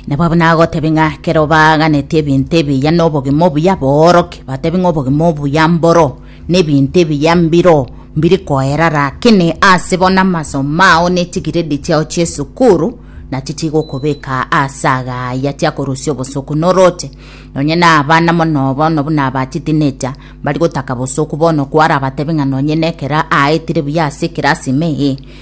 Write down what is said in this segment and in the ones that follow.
nabo abo nagotebe ng'a kero baaganeti ebinto ebiya na obogima obuya booroke batebe ng'a obogima obuya mboro na ebinto ebiya mbiro mbiri koera rakini ase bono amasomo ao na echigiredi chiao chi'esukuru nachi chigokobeka ase agaya tiakorusia obosoku noroche nonye na abana mono bono buna aba chitinecha mbari gotaka bosoku bono kwara batebe ng'a nonye nekero aetire buya ase ekerasi ime eye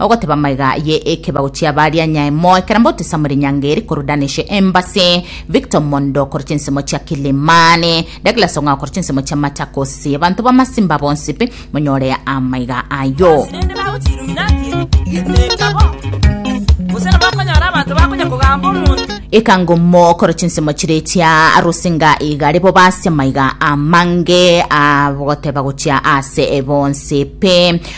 Ogoteba amaiga aye ekebago chi'abaria nyae moe kera mbote Samuel Nyange eri korwa Daneshe Embassy, Victor Mondo korwa chinsemo chia Kilimani, Douglas Ong'ao korwa chinsemo chia Machakos. Abanto b'amasimba bonsi pi monyore amaiga ayio. Naende bagochia Illuminati, getenka bo, gose nabo okonyora abanto bakonya kogamba omonto. Ekangomo korwa chinsemo chire chia Rusinga igare bo base amaiga amange agoteba gochia ase bonsi pi.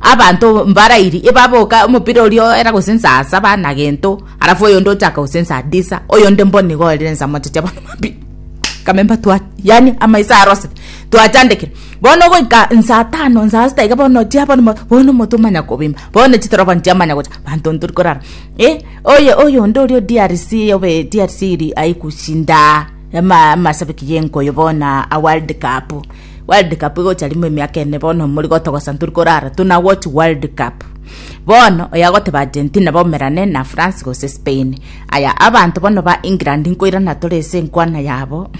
Abanto mbarairi ebaboka omopira oria oera gose nsa saba na gento, arafu oyonde ochaka gose nsa disa, oyonde mbo nigo orire nsa mochache abono mambia kamemba twa yani amaiso arosete twachandekire bono goika nsa tano nsa sita iga bono chia bono bono omoto omanya kobimba bono chitorobani chiamanya gocha abanto ntori korara eh oye oyonde oria o DRC obe DRC iri aye gushinda ama amasabiki ya enkoyo bono aa world cup. World cup igocha rimo emiaka ene bono mori gotogosa tori korara tuna watch world cup bono oya goteba Argentina bomerane na France gose Spain aya abanto bono ba England nkoirana tore ase enkwana yabo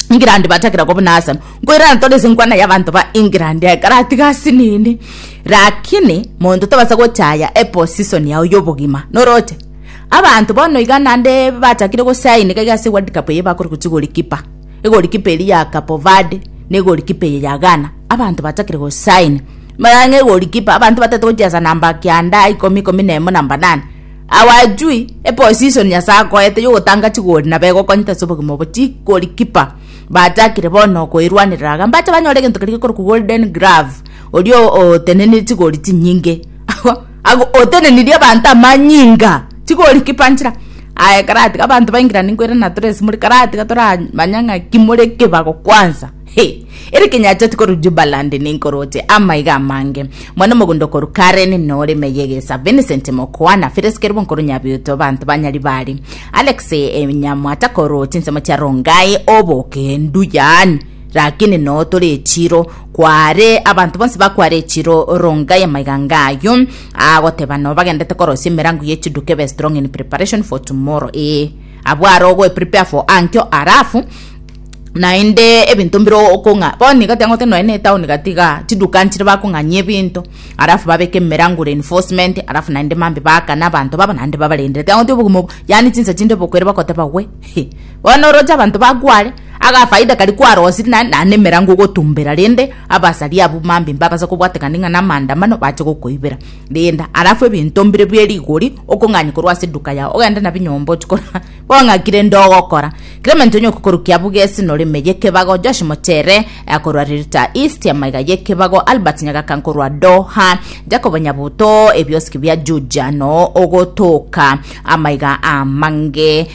England batakera koba na Arsenal nkoirana tore ase enkwana ya abanto ba England ekara atiga ase nini lakini monto tobasa gochaya e position yao yobogima noroche abanto bono iga nande bachakire gosaini gaiga ase world cup eye bakore gochigori kipa egolikipa eria ya Capo Verde, na egolikipa eye ya Ghana, abanto batakire gosaina. Mara ng'a egolikipa, abanto bataete gochiesa namba kianda, ikomi, ikomi na emo, namba nane. Awajui, eposition Nyasae akoete yogotanga chigori nabo egokonyete ase obogima obo. Chigorikipa, batakire bono koerwanerera iga, mbache banyore egento keria gekorokwa golden glove, oria otenenirie chigori chinyinge. Agwo otenenirie abanto amanyinga, tiga ori kipanchera. Aye karatiga abanto baingira ninkwera na tore simore, karatiga toramanya ng'a ki more ekebago kwansa. Hee, ere kenyacheti korwa Jubaland ninkoroche amaiga amange. Mwane omogondo korwa Karen na ore Meye Gesa, Vincent Mokwana, Phyllis Kerubon korwa Nyabiuto, abanto ba Nyaribari, Alex Nyamwata korwa chinsemo chia Rongai, Oboke, Nduyan, Rakini noo tore echiro, Kware abanto bonsi bakware echiro ronga ya maiganga ayo agoteba no bagendete korosia emerango ye chiduke be strong in preparation for tomorrow ee abwo are ogo prepare for ankyo arafu naende ebinto mbire okong'a bono iga tiangote noe ne town gatiga chiduka nchire bakong'anyia ebinto arafu babeke emerango reinforcement arafu naende mambe bakana abanto babo naende babarendere tiangote obogima obo yani chinsa chinde bokwere bakoteba we bono oroche abanto bakware Agafaida karia kwarosirie na naende emerango ogotumbera rende abasari abwo mambia mbabasa kobwatekania ng'a namaandamano bache gokoibera. Renda alafu ebinto mbire bie rigori okong'anya korwa ase eduka yao ogende nabio nyomba ochie korora bono ng'aki rende ogokora. Clement onye okokorukia abwo gesi nore ime y'ekebago, Josh Mochere akorwa Rirta East amaiga y'ekebago, Albert Nyagaka nkorwa Doha, Jacob Nyabuto ebiosiki bia Juja noo ogotoka amaiga amange.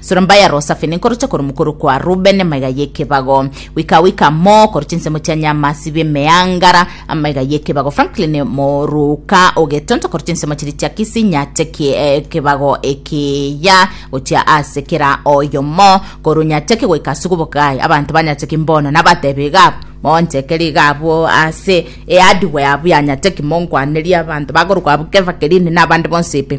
Sorombaia Rosafe nenkoroche korwa mokoro kwa Rubeni amaiga y'ekebago, goika goika mo koroche ensemo chia Nyamasi b'emeangara amaiga y'ekebago, Franklin Moruka o Getonto koroche ensemo chiria chia Kisii Nyate ki ekebago ekiya gochia ase kera oyomo korwa Nyateki goika ase Gobokai, abanto ba Nyateki mbono nabatebe iga abwo, monchekere iga abwo ase earduware abwo ya Nyateki monkwanerie abanto bakorokwa abwo Kefakirini na abande bonsi pi.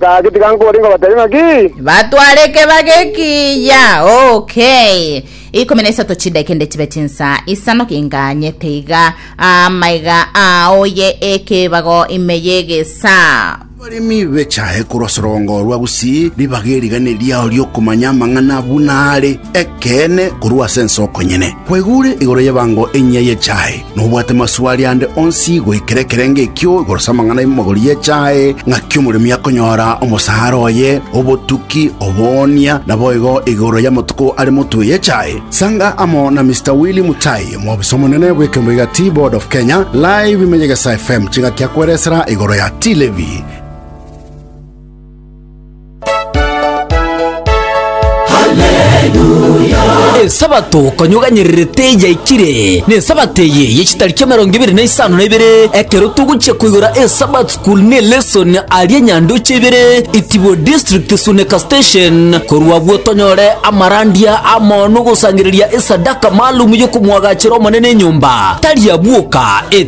Gaki tiga nkore nkobateebie ng'aki? Batware ekebage ekiya. Okay. Ikomi na isato chidekende chibe chinsa isano kinganyete iga amaiga aoye ekebago ime y'egesa. Abaremi bechae korwa sorongo rwa gusii ribaga erigane riao ri'okomanya amang'ana buna are ekeene korwa ase ense okonyene. Kwegure igoro y'ebango enyia y'echae, na obwate maswali ande onsi goikera ekerenge ekio igoro s'amang'ana y'emogori y'echae, ng'aki omoremi akonyora omosaara oye, obotuki, oboonia, naboigo igoro y'amatuko are motwe y'echae. Sanga amo na Mister Willy Mutai, omobisa omonene bw'ekembo iga Tea Board of Kenya, Live ime Nyegesa FM ching'aki akweresera igoro ya Tea Levy. Esabato konyoganyererete yaikire, n'Esabato eye ye chitariki emerongo ebere na isano na ibere, ekero togochia koigora eSabbath School ne lesson aria Nyandoche ibere, Itibo District Suneka Station. Korwa agwo tonyore amarandia amo nogosangereria esadaka maalum yokomwagachera Omonene enyomba, tari abwoka,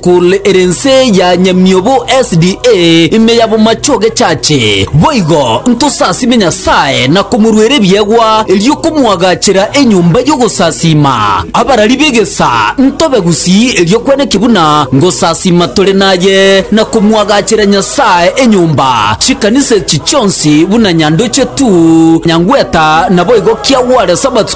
Kul ere ense ya nyamiobo SDA ime ya bomache ogechache. Boigo ntosasime Nyasae na komoruera ebiegwa erio komoagachera enyomba y'ogosasiima. Abarari b'egesa ntobe gusii erio kweneki buna ngosasiima tore naye na komoagachera Nyasae enyomba. Chikanisa echi chionsi buna nyandoche tu, nyangweta naboigo kiagware Sabato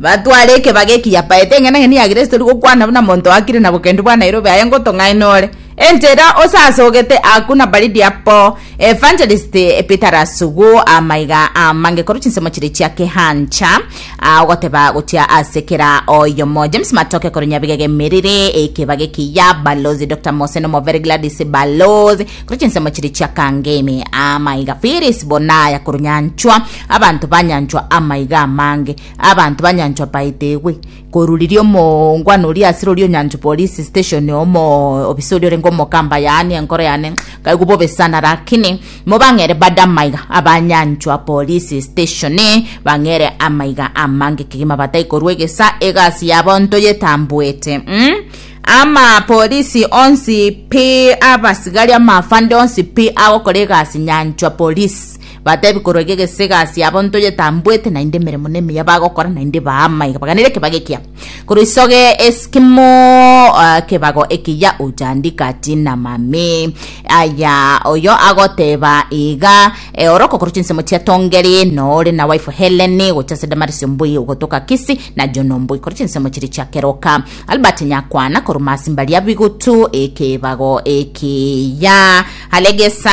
Batware ekebago eki yapaete eng'enang'eni ya Kristo eri gokwana buna monto oakire na bokendu bwa Nairobi aye ngotong'aina ore enchera osasogete aku na baridi apo Evangelist Peter Rasugu amaiga amange korwa chinsemo chire chia kehancha ah, ogoteba gochia ase kera oyomo James Matoke korwa Nyabigega emerire ekebago eki ya Balozi Dr. Mose Nomovere Gladys Balozi korwa chinsemo chire chia Kangemi amaiga Phyllis Bonaya korwa Nyanchwa Abanto banyanchwa amaiga amange, abanto banyanchwa baetegwe korwa riria omoongwana oria ase roria onyanchwa police station omo obisa oria orenge omokamba yaani enkoro yane nkaigwa bobe sana lakini mo bang'ere bade amaiga abanyanchwa police station bang'ere amaiga amange kegima batai korwa egesa egasi yabo ntoyetambuete mm? ama polisi onsi pi abasigari amaafande onsi pi agokora egasi nyanchwa polisi Batebi korwa iga egese egasi yabo ntoyetambuete, naende emeremo na emiya bagokora naende baama iga baganere ekebago ekiya. Korwa isoge esikimo ah, kebago ekiya ochandika chinamami. Aya oyo agoteba iga eh, ore okokorwa chinsemo chia Tongeri nore na waifu Heleni gocha ase Damarisi omboi ogotoka Kisi na Jona omboi korwa chinsemo chiria chia keroka. Albert Nyakwana korwa Masimba Riabigutu ekebago ekiya. Alegesa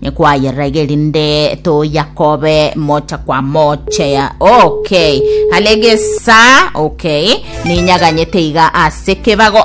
Nikwayerage erinde toyakobe mocha kwa moche okay halegesa okay ninyaganyete iga ase kebago